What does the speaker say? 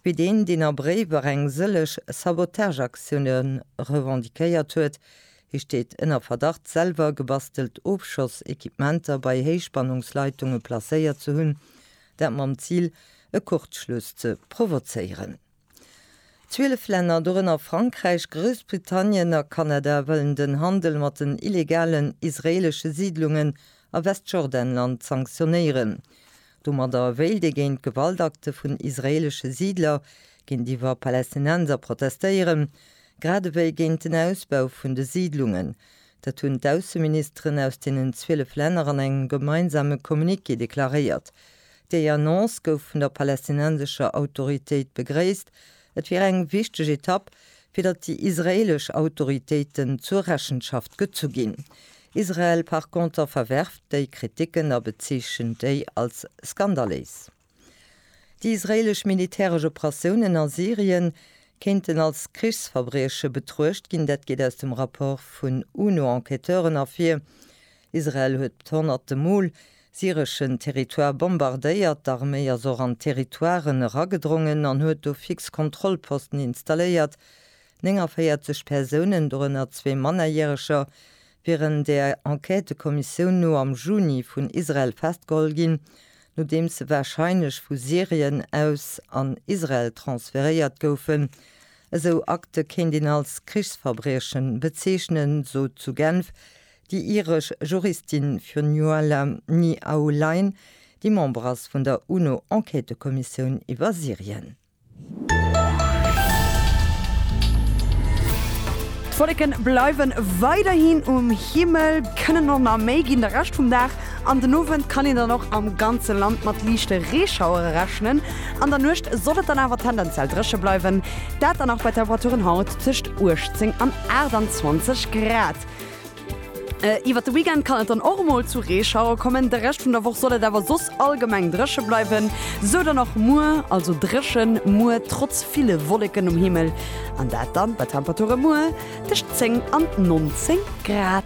wéi deen, deen a Bréiwer eng sëlleg Sabotageaktioune revendiquéiert huet. Hie steet ënner Verdacht, selwer gebastelt Ofschossekipementer bei Héichspannungsleitunge placéiert ze hunn, dat mam Zil, e Kurzschluss ze provozéieren. Zwielef Länner, dorënner Frankräich, Groussbritannien a Kanada, wëllen den Handel mat den illegalen israeelesche Siidlungen a Westjordanland sanktionéieren. Domadder wéilt ee géint Gewaltakte vun israeelesche Siidler géintiwwer Palästinenser protestéieren, grad ewéi géint den Ausbau vun de Siidlungen. Dat hunn d'Ausseministeren aus deenen 12 Länner an engem gemeinsame Communiqué deklaréiert. Déi Annonce gouf vun der palästinensescher Autoritéit begréisst, Et wier eng wichteg Etapp, fir datt déi israeelesch Autoritéiten zur Rechenschaft gezu ginn. Israel par conter verwerft déi Kriticken a bezeechent déi als skandaléis. Déi israeelesch militäresch Operatiounen a Syrien kéinten als Krichsverbrieche betruecht ginn, dat geet aus dem Rapport vun UNO-Enquêteuren ervir. Israel huet honnerte Mol Syreschen Territoire bombardéiert. D'Arméi ass och an d'Territoiren eragedrongen an huet do fix Kontrollposten installéiert. 49 Persounen, dorënner zwee Mannerjäreger, wieren der Enquêtëkommissioun no am Juni vun Israel festgeholl ginn, nodeems se warscheinlech vu Syrien aus an Israel transferéiert goufen. Esou Akte kéint een als Krichsverbriechen bezeechnen, sot zu Genf Déi iresch Juristin Fionnuala Ni Aulain, déi Member ass vun der UNO-Enquêtëkommissioun iwwer Syrien. D'Wolleken bleiwen weiderhin um Himmel, kënnen och nach méi ginn de Rescht vum Dag. An den Owend kann een dann och am ganze Land mat liichte Reeschauere rechnen. An der Nuecht soll et dann awer tendenziell dréche bleiwen, dat dann nach bei Temperaturen haut tëscht 18 an 28 Grad. Iwwert de Weekend kann et dann och mol zu Reeschauer kommen. De Rescht vun der Woch soll et awer soss allgemeng dréche bleiwen. Sou dann och muer, also dréchen muer trotz ville Wolleken um Himmel. An dat dann bei Temperature muer tëscht 10 an 19 Grad.